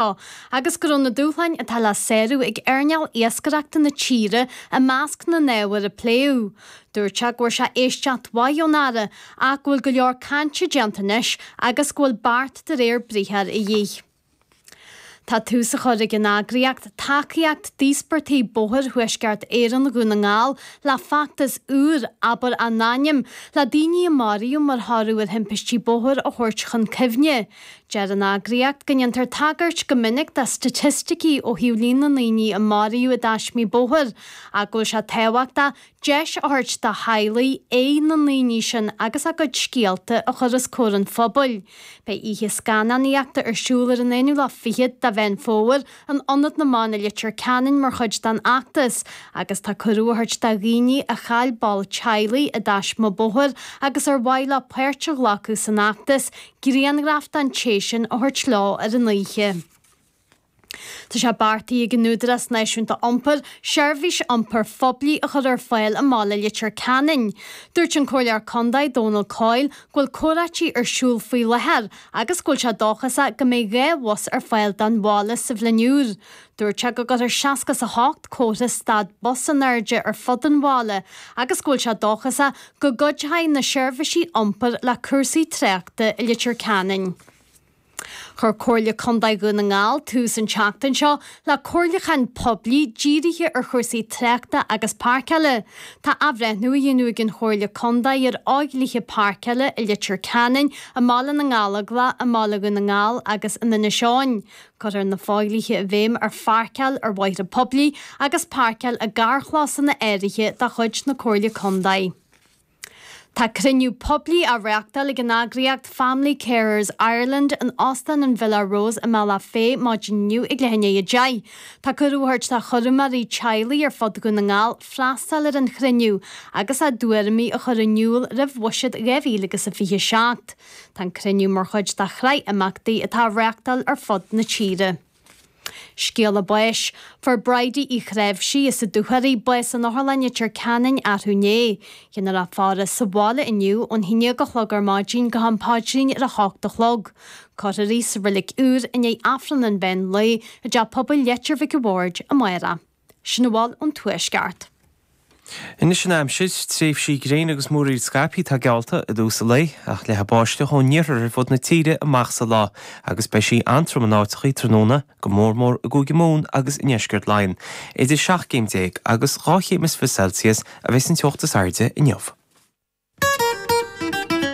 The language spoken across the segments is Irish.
seo, agus go raibh na dúshláin atá le sárú ag earnáil iascaireachta na tíre i measc na n-ábhar a pléadh. Dúirt sé go bhfuair sé éisteacht mhaith ón Aire ach go bhfuil go leor cainte déanta anois agus go bhfuil beart de réir briathair a dhíth. Tá tús á chur ag an eagraíocht tacaíocht d'íospartaigh bóthair Thuaisceart Éireann Dhún na nGall le feachtas úr, Abair a nAinm, le daoine a maraíodh mar thoradh ar thimpistí bóthair a thabhairt chun cuimhne. Deir an eagraíocht go ndéantar tagairt go minic do staitisticí ó thaobh líon na ndaoine a maraíodh i dtaismí bóthair ach go bhfuil sé tábhachtach deis a thabhairt do theaghlaigh aghaidh na ndaoine sin agus a gcuid scéalta a chur os comhair an phobail. Beidh oíche scannánaíochta ar siúl ar an aonú lá fichead de Mheán Fómhair in Ionad na mBan i Leitir Ceanainn mar chuid den fheachtas agus tá cuireadh á thabhairt do dhaoine a chaill ball teaghlaigh i dtaisme bóthair agus ar mhaith leo páirt a ghlacadh san fheachtas grianghraif den té sin a thabhairt leo ar an oíche. Tá sé beartaithe ag an Údarás Náisiúnta Iompair seirbhís iompair phoiblí a chur ar fáil i mbaile Leitir Ceanainn. Dúirt an Comhairleoir Contae Dónal Coyle go bhfuil comhráití ar siúl faoi láthair agus go bhfuil sé dóchasach go mbeidh dhá bhus ar fáil don bhaile sa bhliain úr. Dúirt sé go gcuirfear seasca is a hocht comhartha stad bus in airde ar fud an bhaile agus go bhfuil sé dóchasach go gcuideoidh na seirbhísí iompair le cúrsaí tráchta i Leitir Ceanainn. Chuir Comhairle Contae Dhún na nGall tús an tseachtain seo le comhairliúchán poiblí dírithe ar chúrsaí tráchta agus páirceála. Tá athbhreithniú á dhéanamh ag an Chomhairle Contae ar fhodhlíthe páirceála i Leitir Ceanainn, i mBaile na nGallóglach, i mBaile Dhún na nGall agus in Inis Eoghain. Cuirtear na fodhlíthe i bhfeidhm ar pháirceáil ar bhóithre poiblí agus páirceáil i gcarrchlósanna áirithe de chuid na Comhairle Contae. Tá cruinniú poiblí á reáchtáil ag an eagraíocht Family Carers Ireland in Óstán an Villa Rose i mBealach Féich maidin inniu ag leath i ndiaidh a deich. Tá cuireadh á thabhairt do chúramóirí teaghlaigh ar fud Dhún na nGall freastal ar an chruinniú agus a dtuairimí a chur in iúl roimh bhuiséad 2027. Tá an cruinniú mar chuid de shraith imeachtaí atá á reáchtáil ar fud na tíre. Scéala Báis, Fuair Bridie Uí Chnáimhsí, as an Dúchoraidh, bás in Otharlann Leitir Ceanainn arú inné. Déanfar í a fhaire sa bhaile inniu ón haon déag a chlog ar maidin go ham Paidrín ar a h-ocht a chlog. Cuirfear í sa Reilig Úr i ndiaidh Aifreann an mheán lae i dTeach Pobail Leitir Mhic an Bhaird amárach. Sin a bhfuil ón Tuaisceart. Anois an aimsir tréimhsí gréine agus múraíl scaipthe atá geallta i dtús an lae ach leathfaidh báisteach ón iarthar ar fud na tíre amach sa lá agus beidh sí an-trom in áiteachaí tráthnóna go mór mór i gCúige Mumhan agus i nDeisceart Laighean. Idir seacht gcéim déag agus dhá chéim is fiche Celsius a bheidh sa teocht is airde inniu.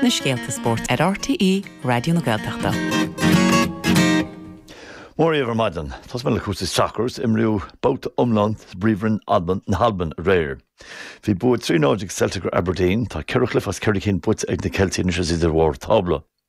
na scéalta spóirt ar RTÉ Raidió na Gaeltachta. Mora dhaoibh ar maidin, tosóidh mé le cúrsaí sacair is imríodh babhta iomlán sa bPríomhroinn na hAlban aréir. Bhí bua trí a náid ag Celtic ar Aberdeen, tá ceithre chluiche as ceithre cinn buaite ag na Ceiltigh anois is iad ar bharr tábla.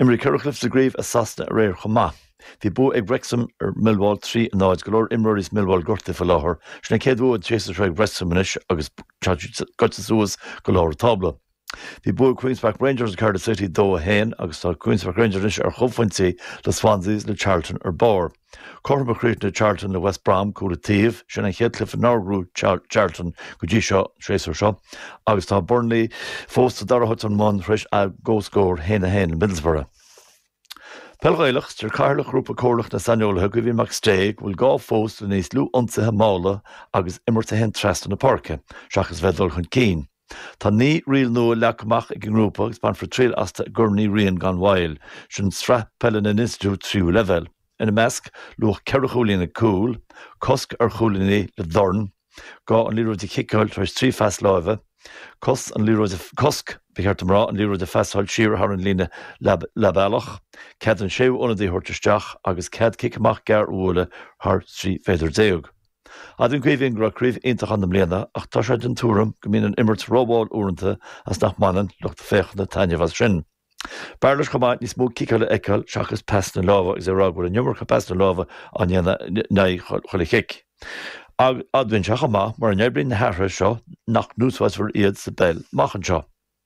Imríodh ceithre chluiche sa gCraobh i Sasana aréir chomh maith. Bhí bua ag Wrexham ar Millwall trí a náid. Go leor imreoirí Millwall gortaithe faoi láthair. Sin an chéad bhua den séasúr seo ag Wrexham anois agus gaibhte suas go lár an tábla. Bhí bua ag Queens Park Rangers ar Cardiff City dó a haon agus tá Queens Park Rangers anois ar chomhphointí le Swansea is le Charlton ar barr. Cothrom a chríochnaigh Charlton le West Brom, cúl an taobh. Sin an chéad chluiche nár bhuaigh Charlton go dtí seo an séasúr seo agus tá Burnley fós sa dara háit ón mbun tar éis a gcomhscór a haon a haon le Middlesbrough. Peil Ghaelach, Deir Cathaoirleach Ghrúpa Comhairleach na Saineolaithe, Caoimhín McStay, go bhfuil gá fós le níos lú ionsaithe malla agus imirt ag dul trasna na páirce, seachas a bheith ag dul chun cinn. Tá naoi riail nua leagtha amach ag an ngrúpa agus bainfear triail astu i gCorn Uí Riain gan mhoill. Sin sraith peile na n-institiúid tríú leibhéal. Ina measc, luach ceithre chúilín ag cúl, cosc ar chúilíní le dorn, gá an liathróid a chiceáil tar éis trí phas láimhe, cos, cosc, ba cheart dom a rá, an liathróid a phasáil siar thar an líne leathbhealach, cead an séú ionadaí a thabhairt isteach agus cead cic amach gearr a bhualadh thar 13 mhéadar. Admhaíonn Caoimhín go raibh craobh iontach ann i mbliana ach tá sé den tuairim go mbíonn an imirt rómhall uaireanta agus nach mbaineann lucht féachana taitneamh as sin. B'fhearr leis chomh maith níos mó ciceála a fheiceáil seachas pasanna láimhe agus é a rá go bhfuil an iomarca pasanna láimhe á ndéanamh in aghaidh chuile chic. Admhaíonn sé chomh maith mura n-oibríonn na hathruithe seo nach n-úsáidfear iad sa bpeil amach anseo.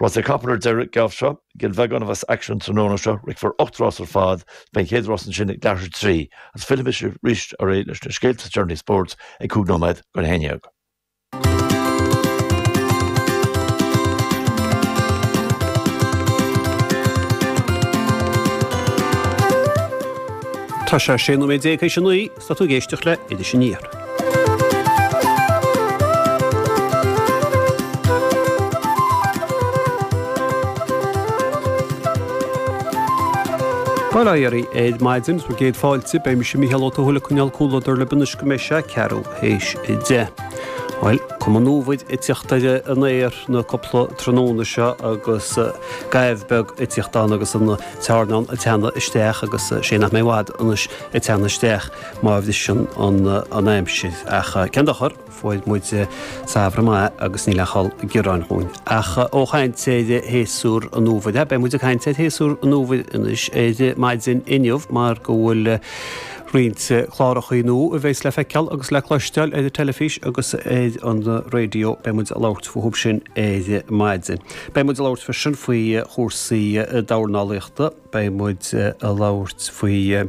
Rásaí capall ar deireadh, Gabhfaidh sibh go dtí Cill Bheagáin a bheas an t-aicsean tráthnóna seo, rithfear ocht rása ar fad, beidh an chéad rás ansin ag leathuair tar éis a trí, agus fillimis arís ar ais leis na scéalta is deireanaí spóirt ag cúig nóiméad go a haon dhéag. Tá sé sé nóiméad déag théis a naoi. Tá tú ag éisteacht le Iris Aniar. Bail ó Dhia oraibh ar maidin is míle céad fáilte, beidh mise Micheál Ó Tuathail ag coinneáil comhluadar libh anois go mbeidh sé ceathrú théis deich. Bhuel, is cuma nó tá fionnuaireacht san aer na cupla tráthnóna seo agus goimh beag eicínt ann agus an tráthnóna ag teannadh isteach agus sé nach mbeidh i bhfad anois. a teannadh isteach má bhriseann an aimsir. Ach cén dochar, fuair muid Samhradh maith agus níl aon chall gearán dhúinn. Ach ó chaint ar shéasúr an Fhómhair, beidh muid ag caint ar shéasúr an Fhómhair anois, ar maidin inniu, mar go bhfuil roinnt clárachaí nua a bhéas le feiceáil agus le cloisteáil ar an teilifís agus ar an raidió. Beidh muid ag labhairt fúthub sin ar maidin. Beidh muid ag labhairt freisin faoi chúrsaí dornálaíochta. beidh muid a labhairt faoi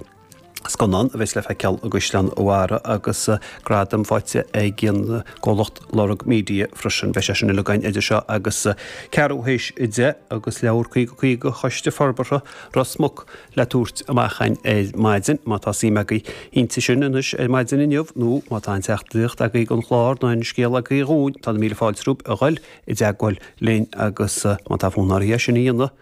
scannán a bheas le feiceáil i gCaisleán a Bharraigh agus gradam faighte ag an gcomhlacht Lorg Media freisin. Beidh sé sin uilig againn idir seo agus ceathrú théis a deich agus leabhar 50 50 Choiste Forbartha Ros Muc le tabhairt amach againn ar maidin. Má tá suim agaibh inti sin anois ar maidin inniu nó má tá an teachtaireacht agaibh don chlár nó an scéal agaibh dhúinn tá na míle fáilte romhaibh a dhul i dteagmháil linn agus má tá fonn oraibh é sin a dhéanamh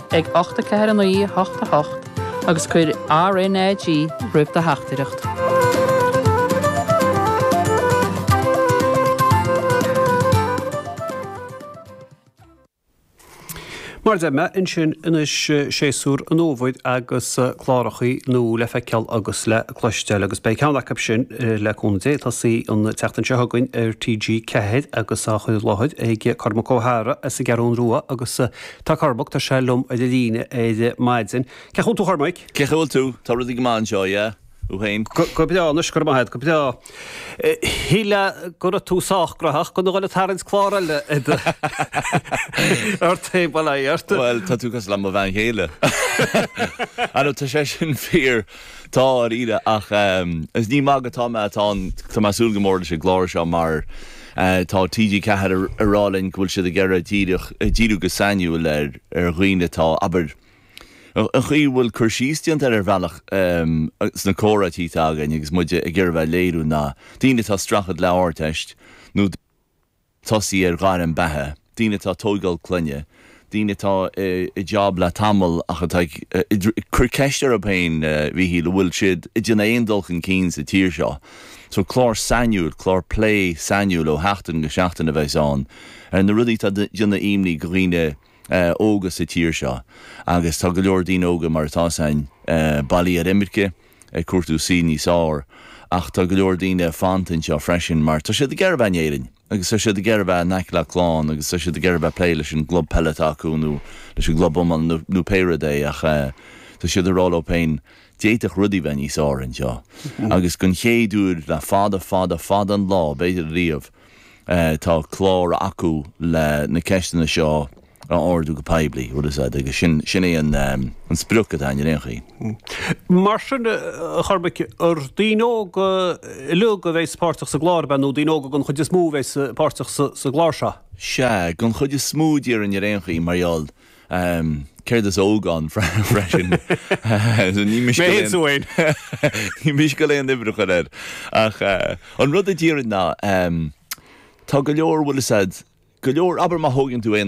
ag ocht a ceathair a naoi a hocht a hocht agus cuir RNAG roimh do theachtaireacht. Mar a deir mé ansin anois séasúr an fhómhair agus clárachaí nua le feiceáil agus le cloisteáil agus beidh ceann acu sin le cúnamh Dé ag tosaí an tseachtain seo chugainn ar TG4 agus á chur i láthair ag Cormac Ó hEadhra as an gCeathrú Rua agus Tá Cormac, tá sé liom ar an líne ar maidin. Cén chaoi a bhfuil tú a Chormaic? Cén chaoi a bhfuil tú? Tá rudaí go maith anseo, yeah. Thú féin? Go breá anois, go raibh maith agat, go breá. Shíl mé go raibh tú sách gnaitheach gan a dhul ag tarraingt clár eile in RTÉ, bhuel, aye, ort. Bhuel, tá tú cosúil le mo bhean chéile. Á no, tá sé sin fíor. Tá, a Ríona, ach is ní ag magadh atá mé, tá an, tá mé ag súil go mór leis an gclár seo mar tá TG4 ag rá linn go bhfuil siad ag iarraidh díreach, díriú go sainiúil ar, ar dhaoine atá, abair, an chaoi a bhfuil cur síos déanta ar, ar bhealach sna comhráití atá againn agus muid ag iarraidh a bheith ag léiriú ná daoine atá ag streachailt le Ardteist nó. tosaí ar ghairm beatha, daoine atá ag tóigeáil clainne, daoine atá i job le tamall ach atá ag cur ceist orthu féin i dtaobh an bhfuil siad ag déanamh aon dul chun cinn sa tír seo? So clár sainiúil, clár plé sainiúil ó sheachtain go seachtain a bheas ann ar na rudaí atá ag déanamh imní do dhaoine óga sa tír seo agus tá go leor daoine óga mar atá 's a'inn bailithe ar imirce, ag cuartú saol níos fearr ach tá go leor daoine fanta anseo freisin mar tá siad ag iarraidh a bheith in Éirinn agus tá siad ag iarraidh a bheith in aice le a clann agus tá siad ag iarraidh a bheith ag plé leis an gclub peile atá acu nó leis an gclub iomána nó pé rud é ach tá siad ag rá leo féin d'fhéadfadh rudaí bheith níos fearr anseo agus den chéad uair le fada fada fada an lá b'fhéidir riamh tá clár acu le na ceisteanna seo a a ardú go poiblí, rud a d'fhéadfadh, agus sin, sin é an, an sprioc atá againn ar aon chaoi. Mar sin, a Chormaic, ar daoine óga uilig a bheidh páirteach sa gclár seo, nó daoine óga den chuid is mó a bheidh sa, páirteach sa, sa gclár seo? Sea, den chuid is mó, déarfainn, ar aon chaoi, mar gheall, céard is óg ann freisin, so ní miste a leithéid, Mé fhéin! ní miste a leithéid aois a chur air. Ach an rud a déarfainn ná, tá go leor, bhfuil 'fhios a'd, go leor, abair má thógann tú aon,